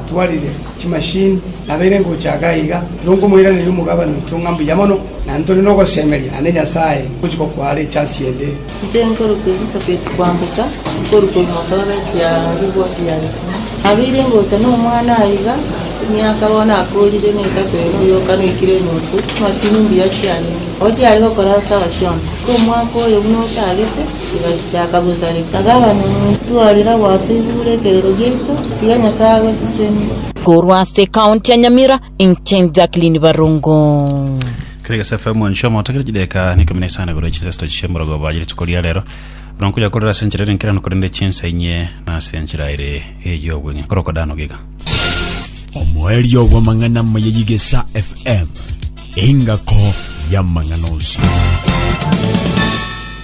Twarire chimashini nabeire ngocha iga iga, nonkomoiraneria omogabane oito ng'a mbuya mono, na ntore nogosemeria, naende Nyasae ngochia gokwara echasi ende. Inche nkoruka Elisabeti kwamboka, nkoruka ebimotooro ekiaarigwa kia Yohana. Nabeire ngocha nomwana aiga, emiaka bono akoorire netato ere oyoka noikire enusu, chimashini mbuya chiarenge, nabo chiare gokora sawa chionsi. Omwaka oyo buna ochagete, Tigachiaka gosareka. Akaba nomotwarire gwatoigure ekerero giaito, tiga Nyasae agosesenie. Korwa ase county ya Nyamira inche Jacqueline Barongo. Kregesa FM mwancho moto kire chideka ni kumi na isano igoro chisesto chisemorogo baje rituko ria rero buna nkuya korera ase enchera ere nkirano korende chinsa inye na ase enchera ere eyo obweng'e koroko dano giga omoerio bw'amang'ana maya yigesa fm engako y'amang'ana onsi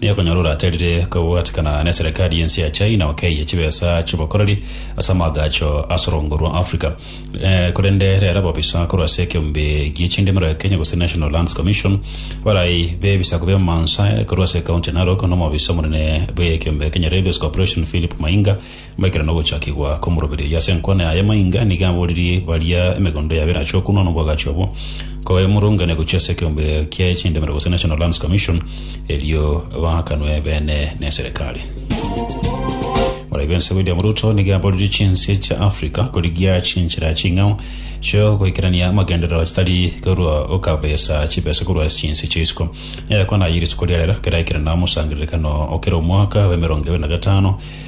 Nigo okonyora oraterire kobwatikana neserekari y'ense ya China okeiye chibesa chi'obokoreri ase amaagacho as'orongo rwa Africa. Eh, korende rero ababisa korwa ase ekeombe gi'echindimero ya Kenya gose National Lands Commission, abarai b'ebisaku bi'amansa korwa ase ekaunti ya Narok, nomobisa omonene bw'ekeombe Kenya Railways Corporation Philip Mainga, Ekero nagochakigwa komoroberia oyio ase enkwana yaye maiga, nigo aboririe baria emegondo yabo erache okunwa nobwagachi obwo, koemurungane gochia ase ekeombe kiaye chindemero gose National Lands Commission, erio baakanwe beene neserikali. Moraibe ense William Ruto nigo aboririe chinse chia Africa korigia chinchera ching'ao chiogoikerania amagenderero chitari korwa gokabesa chibesa korwa ase chinse chia isiko. Egekwanaye rituko riarera keraikire na omosangererekano okera omwaka bw'emerongo ebere na gatano,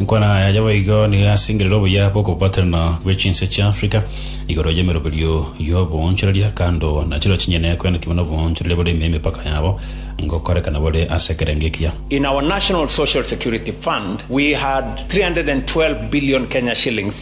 Inkwana yaye boigo nigo yasingerire obuya bw'okobaterana gwe chinse chia Africa igoro y'emeroberio y'oboonchoreria, kando na chiro chinyene ekoenokigwa n'oboonchoreria bore ime y'emepaka yabo, ngokorekana bore ase ekerengo ekiya. In our National Social Security Fund we had 312 billion Kenya shillings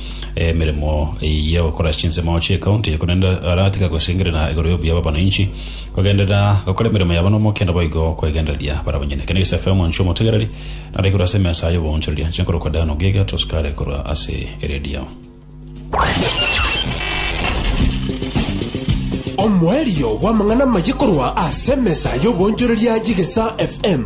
emeremo ya gokora chinsemo chi'ekaunti, korende aratiga gosengerera igoro y'obuya bw'abananchi kogenderera gokora emeremo yabo n'omokenda boigo kwegendereria barabwo nyene. Kende gese Femo inche omotegereri, nare igoro ase emesa y'oboonchoreria, inche nkorokwa Dan Ogiga Tosukare korwa ase eredio. Omoerio bw'amang'ana amaye korwa ase emesa y'oboonchoreria y'Egesaa FM.